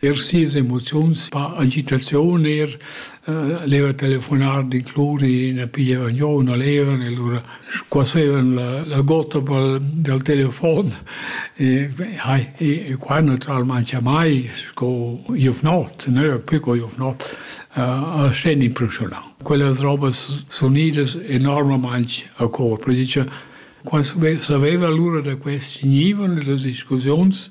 Er sias emoziuns, pa agitaziun er, eh leva telefonar d'incluri, ne piglieva giò una leva e lura squasevan la la gotta pel dal telefon e hai e e qua naturalmaing mai sco giuvnot, ne più co giuvnot, a sten impressionà. Quellas robas sun idas enormamaing a cor, per dir cha qua sape saveva lura da quest gnivon e das discussiuns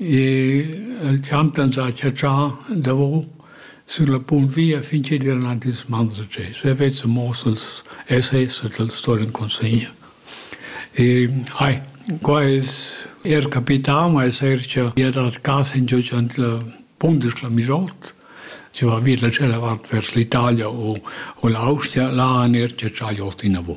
El champ ans ha chatschà davo sün la punt via fin chi'd vain aint ils mans da tschè. Se vezza muoss els essays e tals storin consegner. Ai, qua es eir capità, ma es eir cha ia dat cas ingio cha'nt la punt es cla migiort. Si va vi da tschella vart vers l'Italia o o l'Austria, là han eir chatschà gl'ot inavo.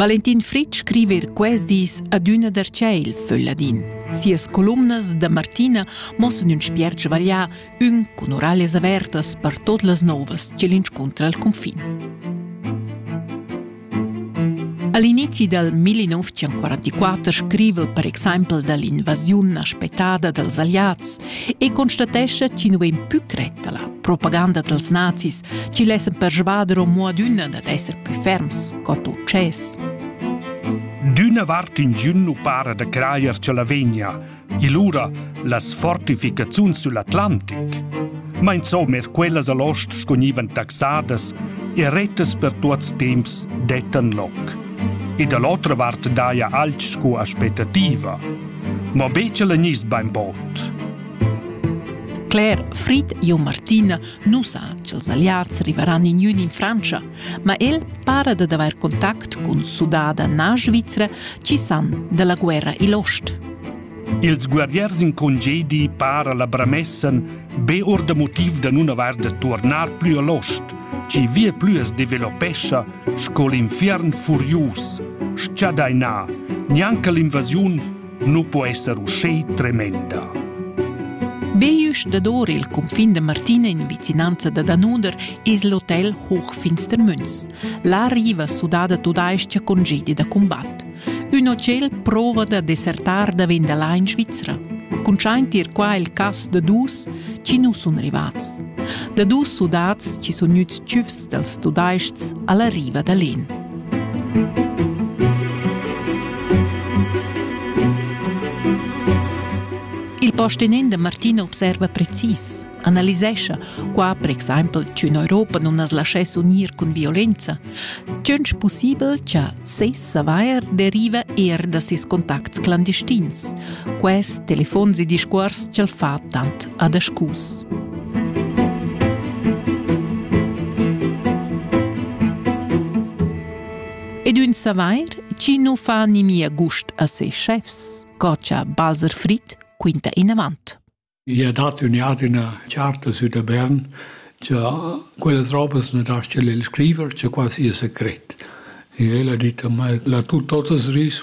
Valentin Fritsch scriva er quest dis adüna der Tschel für Ladin. Sias columnas da Martina mossan ün spiert svaglià, ün cun oralias avertas per tot las novas che l'inscuntra al confin. All'inizio del 1944 scrive per exempel dall'invasiun aspettada dals aliats e constatescha chi nu vain pü cretta la propaganda dals nazis chi lessan persvader amo adüna dad esser pü ferms co success. D'üna vart ingün nu para da crajer cha la vegna, e lura las fortificaziuns sull'Atlantic, ma insomma er quellas a l'ost scognivan taxadas e rettas per tuots temps dettan loc. E da l'otra vart daja alch sco aspettativa – Ma becha la gnist bainbod. Claire, Frid e Martina nu sa cha'ls Alliards rivaran in üna in Frantscha, ma el para dad avair contact cun sudada na svizra chi san da la guerra i'l ost. Ils guerriers in congedi para la bramessen be or da motiv da nun avair da turnar plü a l'ost, chi vie plü as developescha Sco l'infiern furius, schadainà, gnanca l'invasiun nu po esser uschè tremenda. Beüsch dador il cunfin da Martina in vicinanza da Danunder es l'hotel Hochfinstermünz. Là riva sudada tudais-cha con gedi da cumbat. Ün hotel prova da desertar davent da là in Svizra. Cuntschaint ir qua il cas da dus chi nu sun rivats. Da dus sudats chi sun gnüts tschüfs dals tudaists alla riva da l'En. Il postenend Martin observa precis. analisescha qua per exempel ch'ün Europa non as laschess unir cun violenza, tschünch pussibel cha ses savair deriva eir da ses contacts clandestins. Quest telefons e discuors ch'el fa tant adascus. Ed ün savair chi non fa nimia gust a ses chefs, co cha Balzer Fritt quinta inavant. I ha dat ün jard üna charta sü da Bern cha quellas robas na dastga el scriver, cha quai sia secret. E el ha dit a mai, la tut totas ris